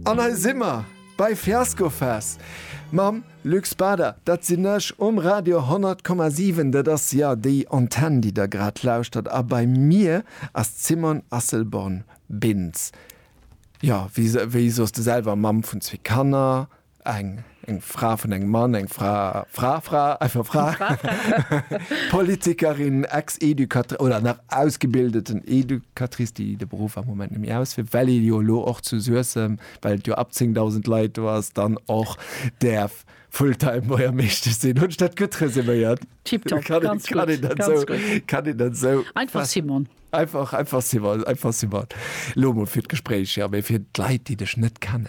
An hei si mer bei Fiasco Fest mam Luc Spader. Dat sinn ech um Radio 100,7. Dat ass jo déi Antenn, déi Der grad lauschtert. A bei mir ass d'Simone Asselborn-Bintz. Jo, wéi soss de selwer? Mamm vun zwee Kanner, Eng, eng Fra vun engem Mann, eng Fra, Fra, Fra, einfach Fra, Politikerin, Ex-Educatrice oder nach ausgebildeten Educatrice, déi de Beruff am Moment net méi ausféiert, well ee jo elo och zu Suessem, well et jo ab 10.000 Leit do ass, dann och däerf Full-time Buergermeeschtesch sinn. Hunn ech dat gutt resuméiert? Tiptop, ganz gutt. Kann een dat esou, kann een dat esou? Einfach Simon. Einfach, einfach Simon, einfach Simon. Elo emol fir d'Gespréich, ja, mee fir d'Leit, déi dech net kennen.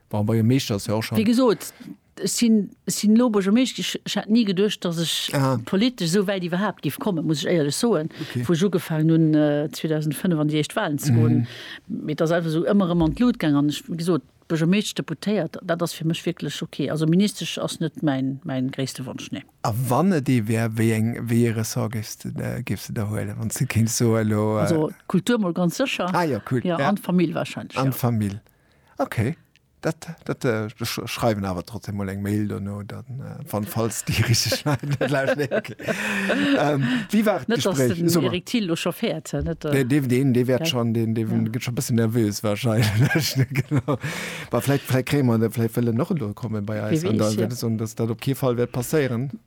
Bon, bei e Meeschter ass jo och Wéi schonn. gesot, ech sinn, ech sinn elo Buergermeescht gi. Ech hat ni geduecht, datt ech Aha. politesch esou wäit iwwerhaapt giff kommen, muss ech éierlech soen, Okay. wou ech ugefaangen hunn, äh, 2005 an déi éischt Wahlen ze goen. Mee et ass einfach esou ëmmer erëm an d'Lut gaangen. An ech, wéi gesot, Buergermeesch, Deputéiert, dat ass fir mech wierklech okay. Also Ministesch ass net mäin, mäin gréisste Wonsch, nee. A wann et ee wär, wéi eng, wéi ee Ressort géifs de, de, géifs de der huelen, wann s de kéints soen elo? Äh, Also d'Kultur mol ganz sécher. ah jo, cool. Ja, Ja. an d'Famill wahrscheinlech, An ja. d'Famill. Okay. Dat, dat, äh, schreiwen awer trotzdem mal eng Mail no dann äh, van falls die richtig ähm, wie war net wert schon den de ja. schon bisschen nervös wahrscheinlich war vielleicht vielleicht krämer der vielleicht fälle noch kommen bei Eis, und dann, ja. das, und das dat op okay fall wird passieren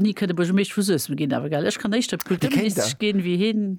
nie gehen aber ich kann nicht gehen wie hin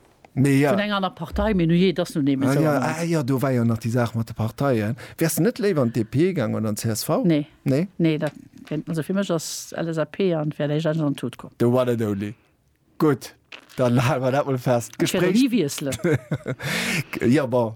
Vun enger aner Partei, mee nujee, et ass nun eemol esou. Ah jo, do war jo nach déi Saach mat de Parteien. Wäers de net léiwer an d'DP gaangen oder an d'CSV? Nee. Nee? Nee, dat, also fir mech ass LSAP an wär léiwer an d'Tut komm. The one and only. Gutt, dann hale mer dat mol fest. Ech wäert och ni wiesselen. Jo, bon.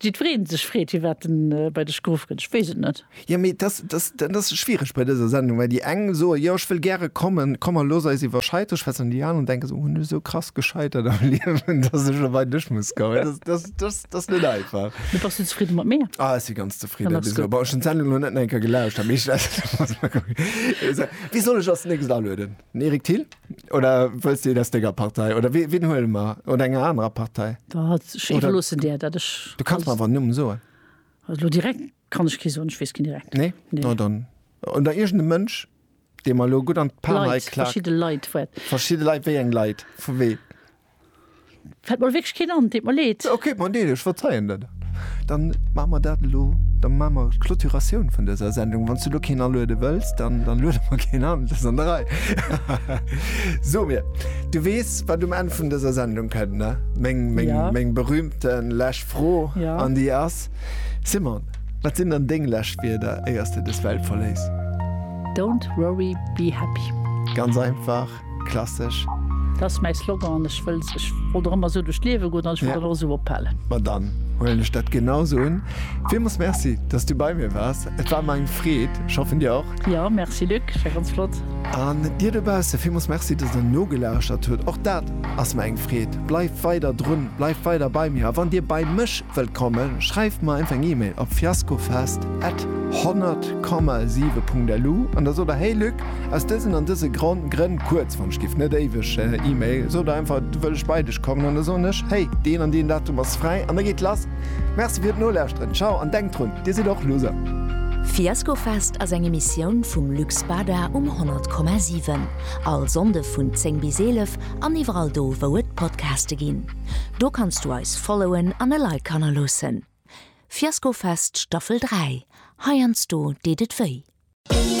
Jiddwereen sech freet, Hie waert en bei dech geruff gëtt? Ech weess et net. Jo, mee dat ass schwiereg bei dëser Sendung, well déi eng soen, Jo, ech wëll gäre kommen, komm mer looss eis iwwer Scheiteren schwätzen, an déi aneren denken sech, Hunn ech esou krass gescheitert am Liewen, dass ech elo bei dech muss kommen? Dat ass net einfach. Mee bass du zefridde mat mir? Ah, ech si ganz zefridde bis elo. Bon, ech hunn d'Sendung elo net nach eng Kéier gelauschtert, mee ech wéi soll ech als nächst alueden? Den Eric Thill? Oder wëlls de een aus denger Partei? Oder wee, ween huele mer? Oder enger anerer Partei? Da hat ech Oder- iwwerloossen Dir, dat ech. Du kanns mer awer en Numm soen. Also lo direkt kann ech kee soen, ech weess keen direkt. Nee? Nee. No dann. Oder iergende Mënsch, dee mer lo gutt an d'Pan hei Leit, klack. verschidde Leit, wat. Verschidde Leit, wéi eng Leit? Vu ween? Fällt mer wierklech keen an, deet mer leed. Ok, bon deal, ech verzeien der dat. Dann maache mer dat elo, da maache mer d'Clôturatioun vun dëser Sendung. Wann s du elo keen aluede wëlls, dann luede mer keen an, dat ass an der Rei. So mir, du weess, wat um Enn vun dëser Sendung kënnt, ne? Meng berühmte lescht Fro an déi ass, Simone, wat sinn dann deng lescht Wierder, éier s de dës Welt verléiss? Don't worry, be happy. Ganz einfach. Klassech. Dat ass mäi Slogan an ech wëll ech wollt och ëmmer esou duerch d'Liewe goen an ech wëll dat och esou ophalen. Ma dann huelen ech dat genau esou un. Villmools Merci, dass du bei mir waars. Et war mer eng Freed. Ech hoffen dir och. Jo, Merci Luc, et war ganz flott. An dir dobausse villmools Merci, dass der nogelauschert hutt. Och dat ass mer eng Freed. Bleift weider drun, bleift weider bei mir. A wann dir bei mech wëllt kommen, schreift mer einfach eng Email op fiaskofest at 100,7.lu an da sot der, Hey Luc, Aus dësen an dëse Gronn, Grënn, kuerz, wann ech giff net éiweg Email, sot einfach, du wëll ech bei dech kommen, an da soen ech, hey, deen an deen Datum ass fräi, an da geet lass. Merci fir d'Nolauschteren. Ciao, an denkt drun, dir sidd och Loser. Fiaskofest ass eng Emissioun vum Lux Bada um 100,7. All Sonnde vun 10 bis 11 an iwwerall do wou et Podcaste ginn. Do kanns du eis followen an e Like hannerloossen. Fiaskofest Staffel 3, heiansdo deet et wéi.